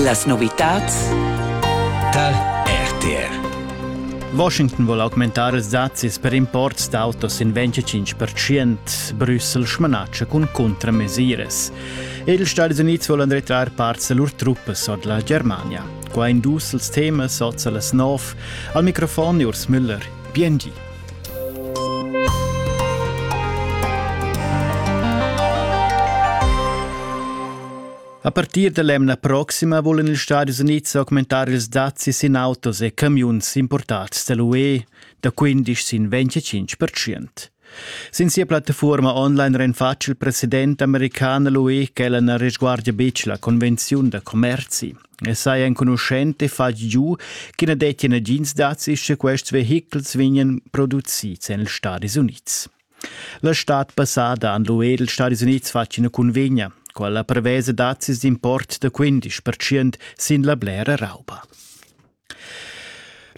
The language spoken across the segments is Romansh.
Las novitats tal RTR Washington vuol augmentar ils dazis per imports d'autos in 25% Brüssel smanatscha cun contramesiras. Ils Stati Uniti volen retrar parts da lur truppas od la Germania. Qua in dus els temas oza las nov. Al microfon Urs Müller. Biengi. A partir dall'emna proxima vulan ils Stadis Unids augmentar ils dazis in autos e camiuns importats dall'UE da 15 sin 25%. Sin sia plattafuorma online renfatsch il president american l'UE ch'ella na resguardia betg la convenziun da commerzi. E sai enconuschent e fatg giu che na dettia nagins dazis sche quests vehichels vegnan producids en ils Stadis Unids. La stad passada han l'UE e ils Stadis Unids fatg ina cunvegna, quella prevesa dazis d'import da 15% sin la blera rauba.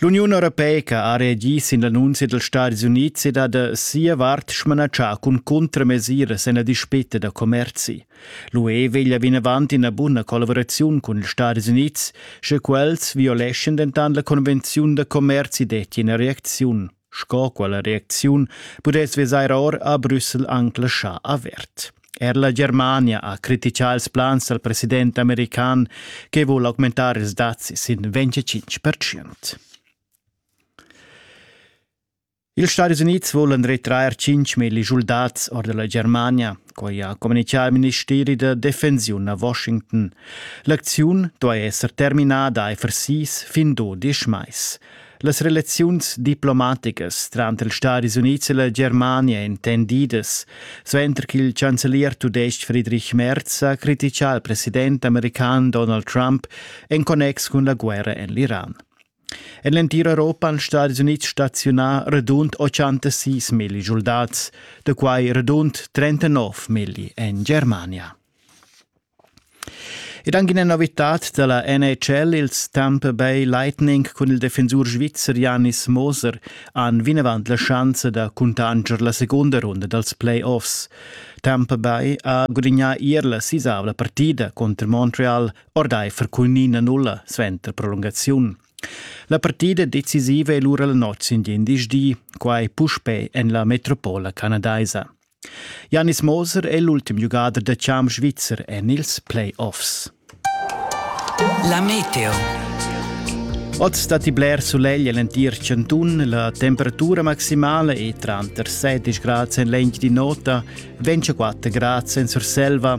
L'Uniun europeica ha reagì sin l'annunzia dals Stadis Unids ed ha da sia vart smanatschà cun cuntramesiras en la dispeta da commerzi. L'UE veglia vinavant ina buna collaboraziun cun ils Stadis Unids, sche quels violeschan dentant la convenziun da commerzi detti ina reacziun. Sco quella reacziun pudess vesair or a Brüssel anc laschà avert. Er la Germania ha critichà ils plans dal president american che vul augmentar ils dazi sin 25%. Ils Stati Unids vulan retrair 5.000 schuldats or della Germania, quai ha communichà il ministeri da defensiun a Washington. L'acziun duai esser terminada aifer sis fin dudisch mais. Las relaziuns diplomaticas tranter ils Stadis Unids e la Germania intendidas, suenter ch'il chancelier tudestg Friedrich Merz ha criticà il president american Donald Trump en connex cun la guerra en l'Iran. En l'entir Europa han Stadis Unids staziunà radund 86 milli soldats, da quai radund 39 milli en Germania. Ed anche una novità dalla NHL, ils Tampa Bay Lightning cun il defensur svizzer Janis Moser han vinavant la chance da cuntanscher la seconda ronda dals playoffs. Tampa Bay ha gudagnà ier la sisavla partida contro Montreal ordaifer cun 9-0 suenter prolungaziun. La partida decisiva è lura la notg in di, quai puspè en la metropola canadaisa. Janis Moser è l'ultim giugader da champ svizzer en ils play-offs. La meteo. Oz datti bler sulegl en l'entir chantun. La temperatura maximala è tranter 16 grads en l'egl di nota, 24 grads en Surselva,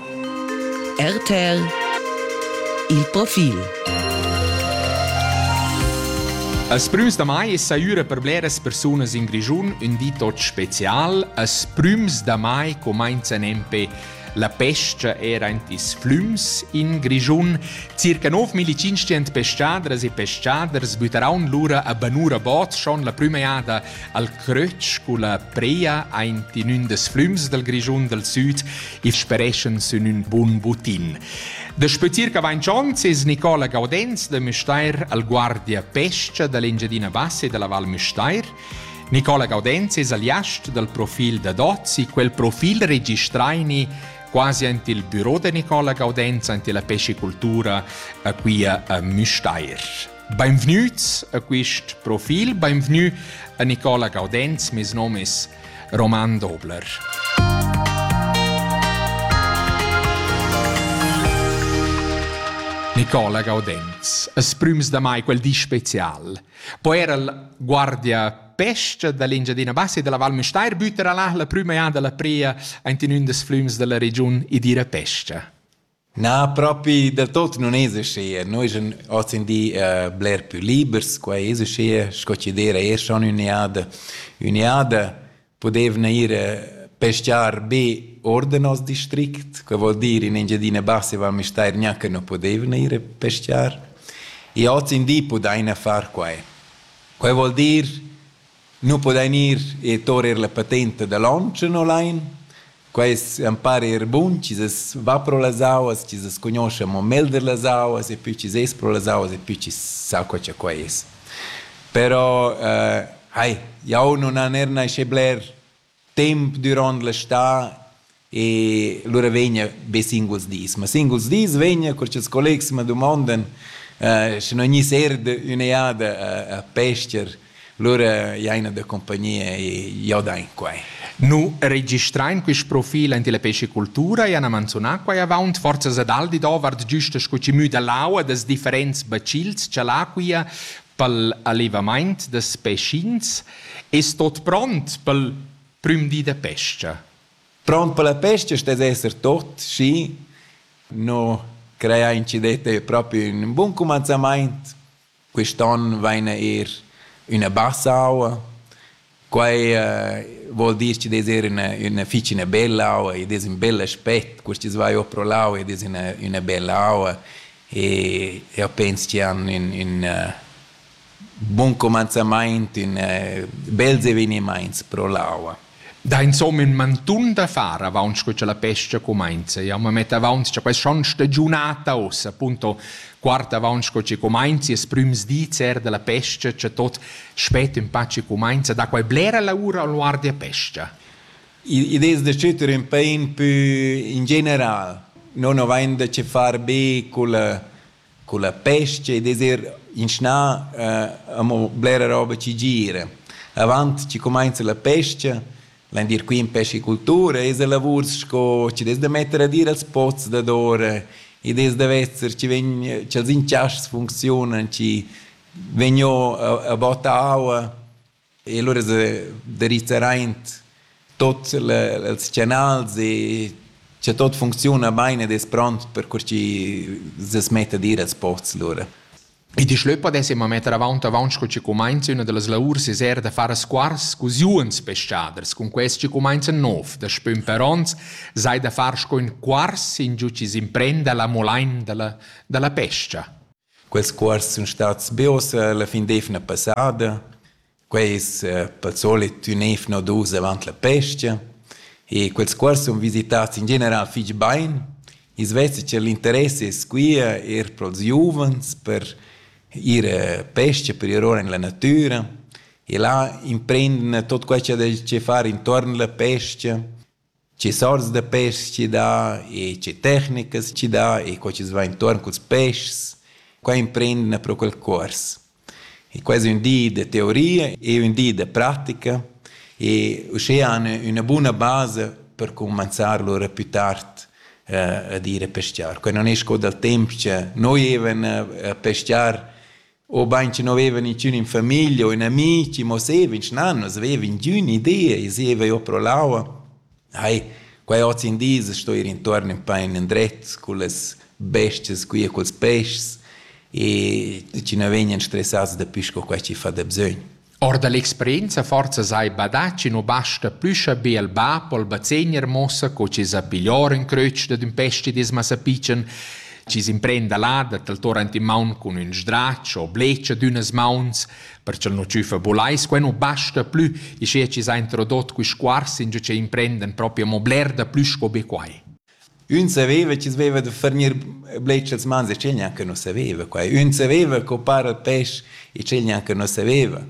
RTL Il profil As prüms da mai es saüra per bleras persunas in Grischun ün di tot special. As prüms da mai comainza nempe la pesca era in tis flüms in Grischun. Circa 9500 pescadras e pescaders bütaraun lura a Banura Bots schon la prüma jada Al crötsch culla pria aint in ün des flüms dal Grischun dal süd il spereschan sün ün bun butin. Da sputir cavancions es Nicola Gaudenz da Müstair al guardia pescha da l'Engiadina Bassa e dalla Val Müstair. Nicola Gaudenz es aliast dal profil da Dozzi, quel profil registraini quasi ant il büro da Nicola Gaudenz, ant la pescicultura a quia a Müstair. Beinvgnüts a quist profil, beinvgnü a Nicola Gaudenz, mes nom es Roman Dobler. Nicola Gaudenz, as prüms da mai quel di special. Poi era il guardia pesca dall'Engiadina Bassa e della Val Mestair bütera là la prüma anda la pria ant in ün des flüms della regiun e dire pesca. Na, propi del tot nun es uschia. Noi eschan hozindì bler pü libers, quai es uschia, sco chi d'eira eir schon ün'eada. Ün'eada pudevna ir peschiar be or da nos district, que voul dir in Engiadina Bassa e Val Müstair gnanca nu pudevna ir a peschiar. E hozindì pudaina far quai. Quai voul dir nu pudain ir e torer la patenta da lonch e no lain. Quaists han par eir bun chi's es va pro las auas, chi's as cugnuoscha amo melder las auas e pü chi's es pro las auas e pü chi's sa co cha quai es. Però, hai, jau nun han eir naschè bler temp duront l'estate e lura vegna be singuls dis. Ma singuls dis vegna, cur che ils collegs ma dumondan, eh, sche non gni serde ün'eada a, a pester, lura jaina da compagnia e jo da in quai. Nu registrain quist profil aint illa pescicultura e han manzunà quai avaunt forzas ad Aldi dovart giüsta sco chi müda l'aua dels differents bacils cha l'acquia pel allevamaint da speschins es tuot pront pel prüm di da pes-cha. Pront per la pesca stess esser tuot, schi no creà in ci detta propi ün bun cumanzamaint. Quist'on vaina eir üna bassa aua Quai uh, vuol dir che des er üna, üna fich üna bella aua, ed es ün bel aspet, questis vai o pro l'aua ed es üna, üna bella aua e io pens che han ün, ün uh, buon comenzamaint, ün uh, bels evenimaints pro l'aua. Da insomma in mantun da far avaunt scu cha la pesca cumainza. Jau ma metto avaunt cha questa stagiunata ossa, appunto guarda avanti sco che comincia ils primi dis er della pesca, c'è tot spet in pace comincia, da qual blera lavora a guardia pesca. Idee da citer in pain più in general, non avain da che far be con la, con la pesca e desir inschna eh, amo blera roba ci gira. Avanti ci comincia la pesca L'envier qui in pescicultura es a lavur sco chi dess da metter ad ir als pots dadora ed es da vezer chi vegn cha'ls inchaschs funcziunan, chi vegno a botta aua e lura es da rizzar aint tuot ils canals e cha tuot funcziuna bain ed es pront per cur chi s'es met ad ir als pots lura. E di schlöppa dess immer metter avaunt avaunt sco chi cumainza üna da las laurs es eir da far squars cus juns peschaders, cun quest chi cumainza nov, da spün per ons, sai da far sco ün quars ingiù chi s'imprenda la molain da la, da la pescha. Quels cuors sun stats be ossa la fin d'eivna passada. Quei es eh, pel solit ün ev nodus davant la pes-cha e quels qua sun visitats in general fich bain. I's vesa che l'interess es quia eir pro'ls giuvens per ir a pesca, per ir ora in la natüra e là imprenden tot quai cha dais che far intuorn la pesca Tge sorts da peschs chi dà e tge tecnicas chi dà e co chi's va intuorn culs peschs, qua imprendina pro quel cuors. E quai es ün di da teoria e ün di da pratica e uschea han üna buna basa per cumanzar lur a più tard ad ir a peschiar. Quai non es co dal temp cha noi evan a peschiar obein che no veva niciun in famiglia o in amici, mo seva in schnannas, veva ingün idea e seva jo pro l'aua. Ai, quai oz in dis sto ir intorn in pain indret con las bestias qui e culs peschs e ci no vegnan stressats da più sco quai chi fa da bsögn. Or da l'experienza forsa sai badatg nu basta plü cha be il bap o il bazegner muossa co chi s'ha piglior ün crötsch dad ün pestidisma sapichan, chi s'imprenda là da taltor ant in maun cun ün sdrach o blecha d'ünas mauns, perch'el nu tschüffa bulais. Quai nu basta plü, ischia chi s'ha introdot quist cuors ingio ch'ei imprendan propi amo bler da plü sco be quai. Ün saveva chi's veva da furnir bletschas mans e tgei gnanca nu saveva quai. Ün saveva co para il pesch e tgei gnanca nu saveva.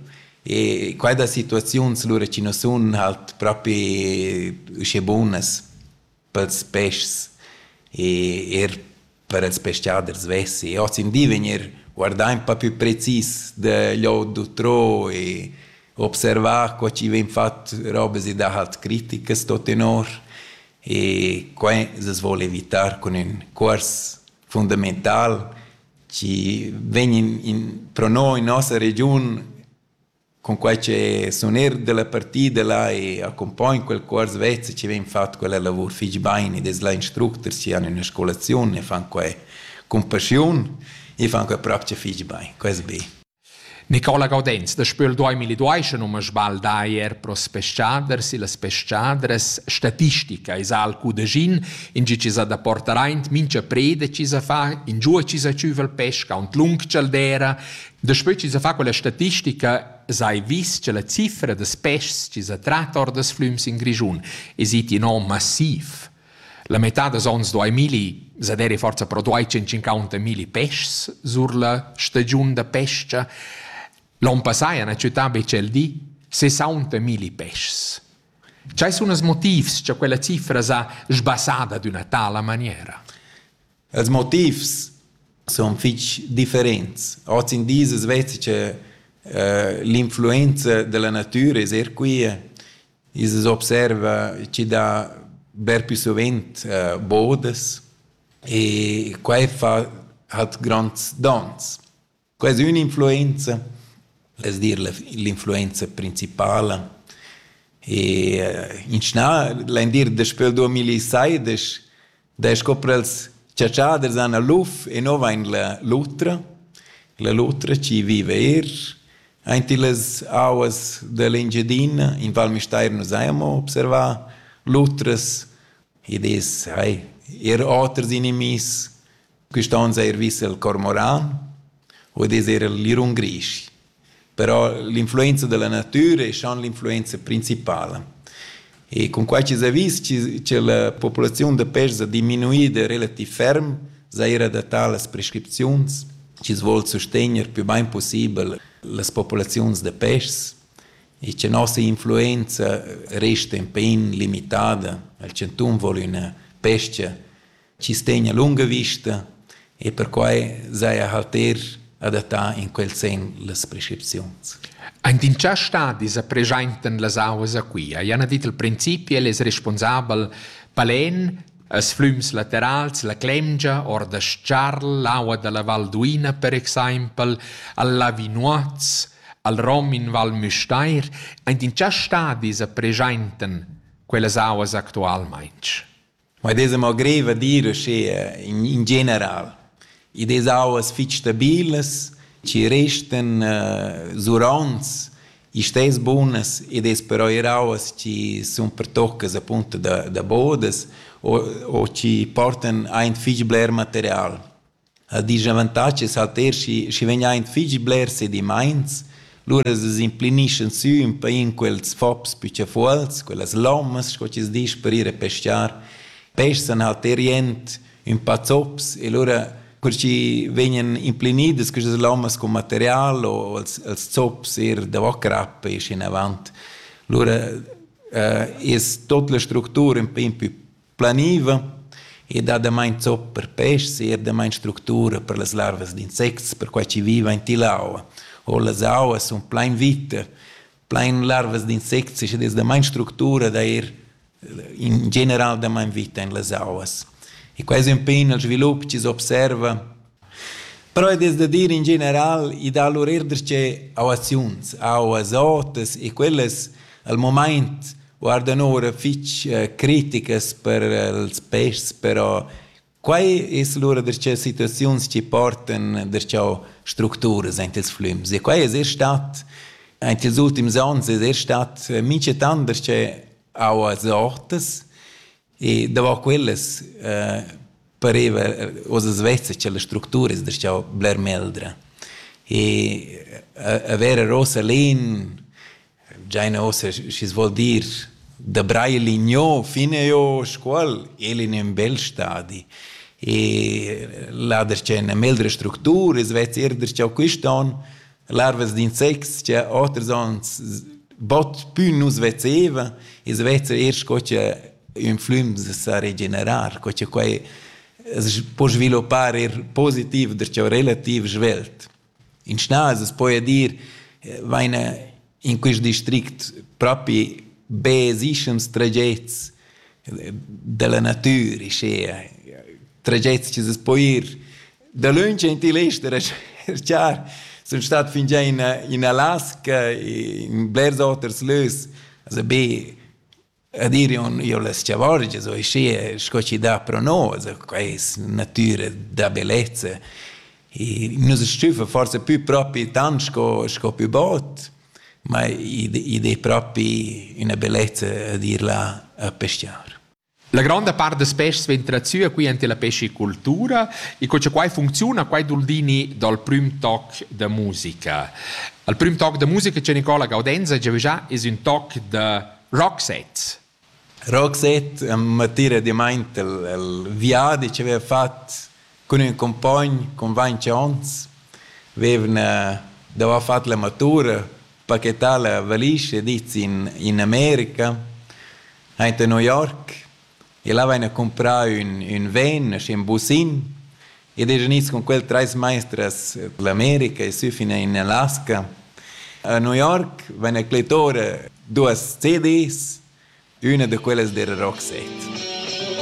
E quai da situaziuns lura chi nu sun halt propi uschè bunas pels peschs. E eir per ils pescaders vessi ozendi vegnir guardà in po più precis da lò d'utrò e observà co chi vegn fat robas e dahalt criticas tot tenor e quai s'as voul evitar cun ün cuors fundamental chi vegn in pro no in nossa regiun Cunquai che sun eir dalla partida là e accumpogn quel cuors vez e chi vegn fat quella lavur fich bain ed es là instructers chi han üna scolaziun e fan quai cun paschiun, i fan quai propcha fich bain, quai es be. Nicola Gaudenz da Spöl duaimilli duaischa nu m'ha sbaldà eir pro s-peschaders illas peschadras. Statistica esa al cudeschin, ingio chi s'ha da portar aint mincha preda chi s'ha fa, ingiua chi s'ha tschüva il pesch, aunt lung cha'l d'eira, Daspö chi s'ha fat quella statistica s'hai vis cha la cifra da peschs chi s'ha trat or das flüms in Grischun es it in on massiv. La metà dals ons do ai milli, s'ha deri forsa però duai 150 milli peschs sur la stagiun da pes-cha. L'on passà ha la città be tschel di 60 milli peschs. Chai sun els motivs cha quella cifra s'ha sbassada d'üna tala maniera? Els motivs sun fich differents. Hoz in dis as veza che l'influenza da la natüra es eir quia. I's as observa chi dà bler più suvent bodas e quai fa hat gronds dons. Quai es ün'influenza, l'es dir l'influenza principala. E inschnà l'indir daspö 2016 da scoprels chatschaders han a l'uf e no vain la lutra, la lutra chi viva eir aint illas auas da l'Engiadina. In Val Müstair nu s'haja amo observà lutras ed es hai eir oters inimihs Quist on s'ha eir vis il cormoran, vul dir eir il lirun grisch. Però l'influenza da la natüra es schon l'influenza principala. E cun quai chi s'ha vis che la populaziun da pês ha diminuida relativ ferm, s'ha eir adattà las prescripziuns chi's voul sustegner più bain pussibel las populaziuns da pês e cha nossa influenza resta ün pêin limitada. Il chantun voul üna pes-cha chi stegna lunga vista e perquai saja halt eir adattà in quel sen las prescripziuns. Aint in cha stadi sa preschaintan las auas a Quia? Jana dit il principi, el es responsabel palen, as flüms laterals, la Clemgia, or da Charl, l'aua da la Val d'Uina per exaimpel, al Lavinoaz, al Rom in Val Müstair, aint in cha stadi sa preschaintan quellas auas actualmaing? Ma id esa mo greiv a dir uschea in in general. Id es auas fich stabilas, chi restan zuronts, istess bunas ed es però eir auas chi sun pertoccas appunto da da bodas o o chi portan aint fich bler material. ha disavantatgs auter schi schi vegn aint fich blers sedimaints, lura s'implennischan sü ün pa in quels fops püchafuols, quellas lommas sco chi's disch per ir a pescar, peschan auter jent ün pa zops e lura cur chi vegnan implenidas quistas lommas cun material o els els zops eir davo crappa ischinavant. Lura es tuot la structura ün pa impü planiva e dat damain zopp per peschs e er damain structura per las larvas d'insects, perquai chi vivan tilla aua. O las auas sun plain vita, plain larvas d'insects ed es damain structura da ir in general damain vita in las auas. E quai es ün pe ün dal svilup chi s'observa Però ed es da dir in general, i dà lur eir darcheu auaziuns, auas otas e quellas al mumaint guardan oura fich criticas per ils peschs, però quai es lura darcheu situaziuns chi portan darcheu structuras aint ils flüms e quai es eir stat aint ils ultims ons es eir stat minchatant darcheu auas otas E davant quellas eh, pareva oz svessa che la structura es darcheu bler meldra. E avere rosa lin, giaina ossa schi's vuol dir da braille ligno fine io scuol, el in un bel stadi. E là der c'è una meldra structura, es vez er der c'è quist'on, larvas d'insects che oters onns bot pü nus vezevan e's vezza eir sco che ün flüm sa regenerar, co che quai as po sviluppar eir positiv, darcheu relativ svelt. In schnas as poja dir, vaina in quist district propi be esischans tragets della natüra, schea, tragets chi s'es po ir dalöntsch in til ester a cerchar. Sun stat fingià in in Alaska, in blers oters lös, also be Ed ir on io la schavorgia so, e schi sco chi dà pro nos, quai es natüra da bellezza. Nus stüffa forsa pü propi tant sco, sco pü bod, ma id es propi üna bellezza d'ir là a peschiar. La gronda part das peschs vegn tratüa qui ante la pescicultura e co cha quai funcziuna, quai doul dini dal prüm toc da musica. Al prüm toc da musica cha Nicola Gaudenza giavüschà es ün toc da Roxette. Roxette m'attira dimaint el, el viadi chi aveva fat cun ün cumpogn cun vainch ons. Vevna davo fat la matura, pachetà la valigia, dit in in America, aint a New York. El haveva comprau ün, ün ven, schi ün busin, ed es gnids cun quel trais maistras l'America e sü fin in Alaska. A New York van a Clitora duos CDs, üna da quellas dera Roxette.